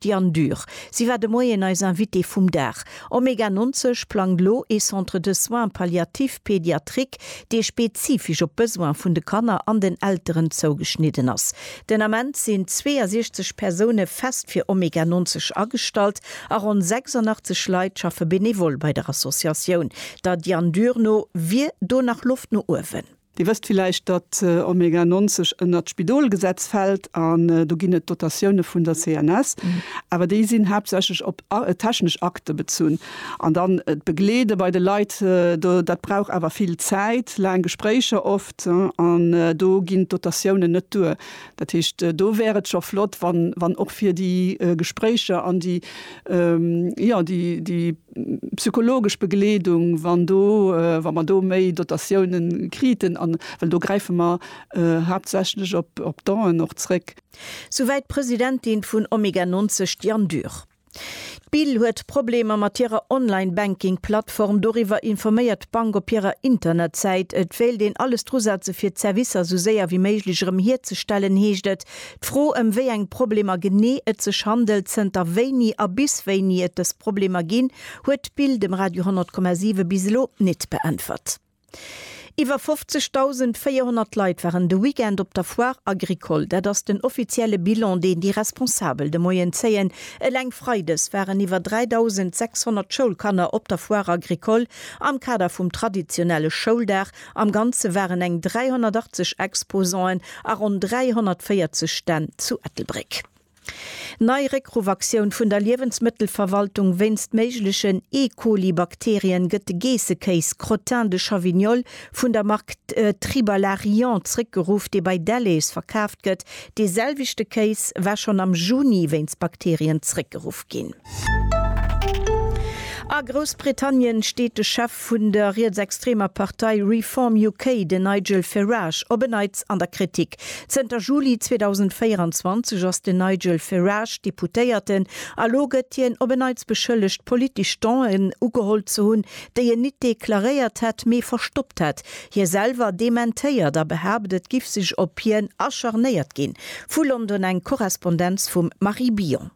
D'Diane Dürr, si war de Moien eis Invitée vum Dag. Omega 90 plangt elo ee Centre de soins palliatifs pédiatriques, dee spezifesch op d'Besoin vun de Kanner an den Elteren zougeschnidden ass. Den Ament sinn 62 Persoune fest fir Omega 90 agestallt a ronn 86 Leit schaffe benevol bei der Associatioun. Der Diane Dürr no wier do nach Loft no uewen. Dir wësst villäicht, datt Omega 90 ënnert d'Spidolgesetz fält an do ginn et Dotatioune vun der CNS, awer déi sinn haaptsächlech op technesch Akte bezunn. An dann d'Begleede bei de Leit, dat brauch awer vill Zäit, laang Gespréicher oft an do ginn d'Dotatiounen net duer. Dat heescht, do wär et scho flott, wann och fir déi Gespréicher an déi, jo, déi. Psychologesch Begleedung, wann do, wa mer do méi Dotatiounen kriten, an, well do gräife mer haaptsächlech op Donen och zréck. Souwäit d'Presidentin vun Omega 90, d'Diane Dürr. D'BIL huet Problemer mat hirer Online-Banking-Plattform. Doriwwer informéiert d'Bank op hirer Internetsäit. Et wéilt een alles drusetze fir d'Servicer esou séier wéi méiglech erëm hierzestellen, heescht et. D'Fro, ëm wéi eng Problemer genee et sech handelt, zënter wéini a bis wéini et dës Problemer ginn, huet d'Bild dem Radio 10,7 bis elo nit beäntwert. Iwwer 50.400 Leit waren de Weekend op der Foire Agricole. Dat ass den offizielle Bilan, deen déi Responsabel de Moien zéien. Eleng Freides waren iwwer 3.600 Schoulkanner op der Foire Agricole am Kader vum traditionelle Schouldag Am Ganze waren eng 380 Exposanten a ronn 340 Stänn zu Ettelbréck. Nei Réckruffaktioun vun der Liewensmëttelverwaltung, Wéinst méiglechen E-Coli-Bakterien gëtt de Geessekéis Crottin de Chavignol vun der Mark Tribalaryant zréckgeruff, dee bei Delhaize verkaaft gëtt. Dee selwechte Kéis war schonn am Juni wéinst Bakterien zréckgeruff ginn. A Groussbritannien steet de Chef vun der rietsextremer Partei Reform UK, den Nigel Ferage, op en Neits an der Kritik. Zënter Juli 2024 ass den Nigel Ferage Deputéierten a lo gëtt hien op en Neits beschëllegt, politesch Don'en ugeholl ze hunn, déi en nit deklaréiert hätt, mee verstoppt hätt. Hie selwer dementéiert a behaapt, et giff sech op hien acharnéiert ginn. Vu London eng Korrespondenz vum Marie Billon.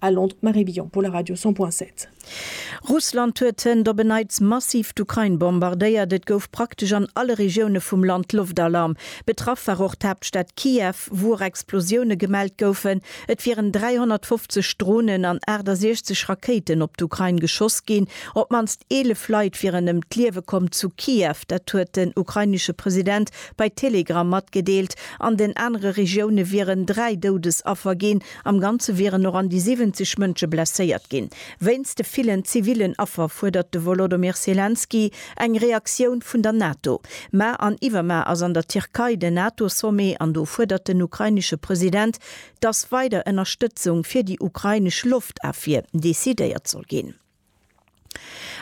A Londres, Marie Billon pour la Radio 100.7. Russland huet zënnt op en Neits massiv d'Ukrain bombardéiert. Et gouf praktesch an alle Regioune vum Land Loftalarm. Betraff war och d'Haaptstad Kiew, wou och Explosioune gemellt goufen. Et wieren 350 Dronen an 68 Rakéiten op d'Ukrain geschoss ginn. Op d'mannst 11 Leit wieren ëm d'Liewe komm zu Kiew. Dat huet den ukrainesche President bei Telegram matgedeelt. An den anere Regioune wieren dräi Doudesaffer ginn. Am Ganze wieren och an déi 70 Mënsche blesséiert ginn. Wéinst de villen zivillen Affer fuerdert de Wolodymyr Selenskyj eng Reaktioun vun der NATO. Mar an iwwermar ass an der Tierkei den NATO-Sommet an do fuerdert den ukrainesche President, dass weider Ënnerstëtzung fir déi ukrainesch Loftafwier decidéiert soll ginn.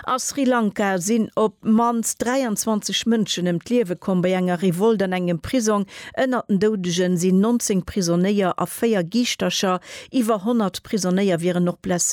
A Sri Lanka sinn op d'mannst 23 Mënschen ëm d'Liewe komm bei enger Revolt an engem Prisong. Ënnert den Doudege sinn 19 Prisonéier a véier Giischtercher. Iwwer 100 Prisonéier wieren och blesséiert.